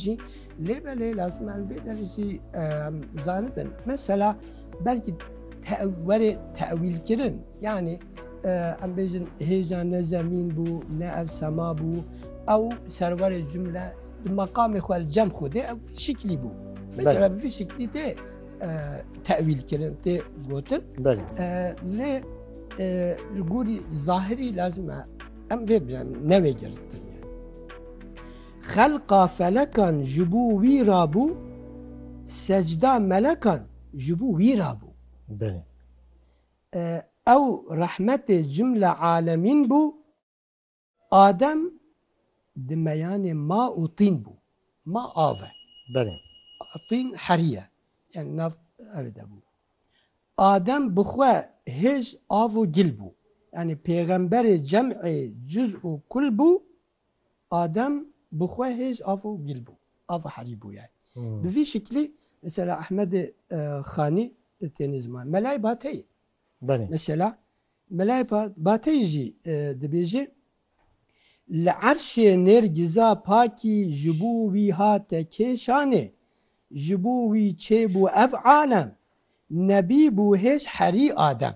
jî lê belê lazim em vê derê jî zanibin. Mesela belkî werê tewîlkirin yanî em bêjin hêja ne zemîn bû ne ev sema bû ew serwerê cumle di meqamê xwe li cem xwedê ew şiklî bû. Mesela bi vî şiklî tê tewîlkirin tê gotin lê li gorî zahirî lazim e em vê bijan nevê girtin. Xelqa felekan ji bo wî rabû, secda melekan ji bo wî rabû. Belê. Ew rehmetê cimle alemîn bû, Adem di meyanê ma û tîn bû. Ma av e. Belê. Tîn herî ye. Yanî nav ev de bû. Adem bi xwe hêj av û gil bû. Yanî pêxemberê cem'ê cuz û kul bû, Adem bi xwe hêj av û gil bû, av û herî bûye. Bi vî şiklî mesela Ehmedê Xanî têne ziman. Melayê Bateyî mesela Melayê Bateyî jî dibêje, Li erşê nêrgîza pakî ji bo wî hate kêşanê, ji bo wî çêbû ev alem, nebîbû hêj herî Adem.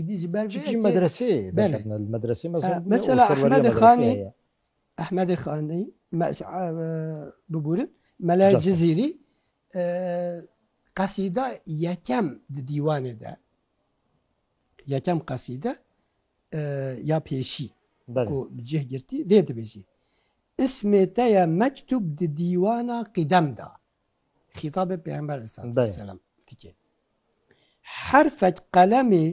Îdî ji ber vê yekê. Çi jî medreseyê derketine li medreseyê me zor bûye û serweriya medreseyê heye. Ehmedê Xanî, bibûrin Mele Cizîrî qesîda yekem di dîwanê de yekem qesîde ya pêşî ku bi cih girtî vê dibêjî. Ismê te ye mektûb di dîwana qîdem de. Xîtabê Pêxember aleyhisselam dike. Herfek qelemê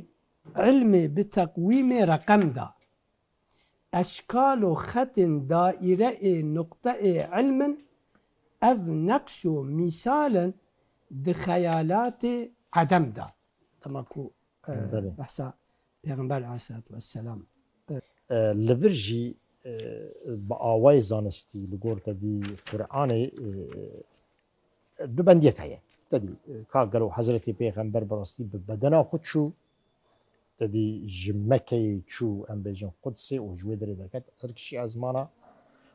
ilmê bi teqwîmê reqem da. Eşkal û xetên daîre ê nuqte ê ilm in, ev neqş û mîsal in di xeyalatê edem de. Dema ku behsa Pêxember aleyhisselatü vesselam. Li vir jî bi awayê zanistî li gor tedî Quranê du bendiyek heye. Tedî ka gelo Hezretê Pêxember bi rastî bi bedena xwe çû tedî ji Mekeyê çû em bêjin Qudsê û ji wê derê derket Tirkişî ez mana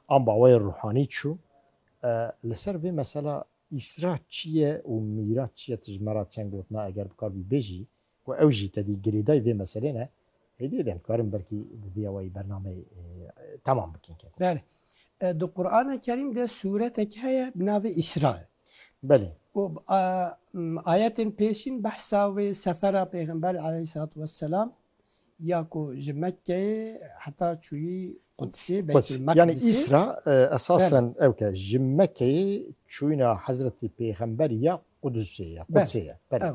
an bi awayê ruhanî çû. Li ser vê mesela îsra çi ye û mîra çi ye tu ji me re çend gotina eger bikar bî bêjî? Ku ew jî tedî girêdayî vê meselê ne, hêdî de dikarin belkî bi vîya wayî bernameyê temam bikin. Belê. Di Qurana Kerîm de sûretek heye bi navê Îsra. Belê. Û ayetên pêşîn behsa wê sefera Pêxember aleyhîssalatu wesselam ya ku ji Mekkeyê heta çûyî Qudsê, Beytulmekdisê. Yanî Îsra esasen ew ke ji Mekkeyê çûyîna Hezretî Pêxember ya Qudusê ye, Qudsê ye. Belê.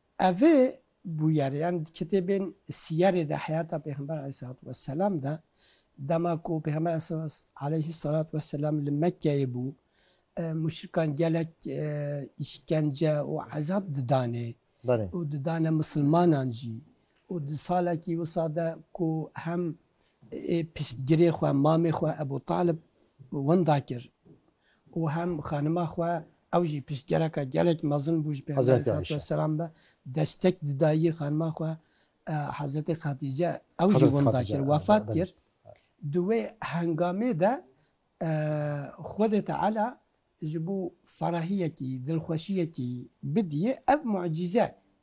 Evê bûyer yan di kitêbên Siyerê de heyata Pêxember aleyhissalatu vesselam de dema ku Pêxember aleyhissalatu vesselam li Mekkeyê bû muşrikan gelek îşkence û ezab didanê û didane misilmanan jî û di salekî wisa de ku hem Piştgirê xwe mamê xwe Ebû Talib winda kir û hem xanima xwe ew jî piştgereke gelek mezin bû ji Pêxemberê salatu weselam ve destek didayî xanima xwe Hezretê Xedîce ew jî winda kir wefat kir. Di wê hengamê de Xwedê Teala ji bo ferahiyekî, dilxweşiyekî bidîyê ev mucîze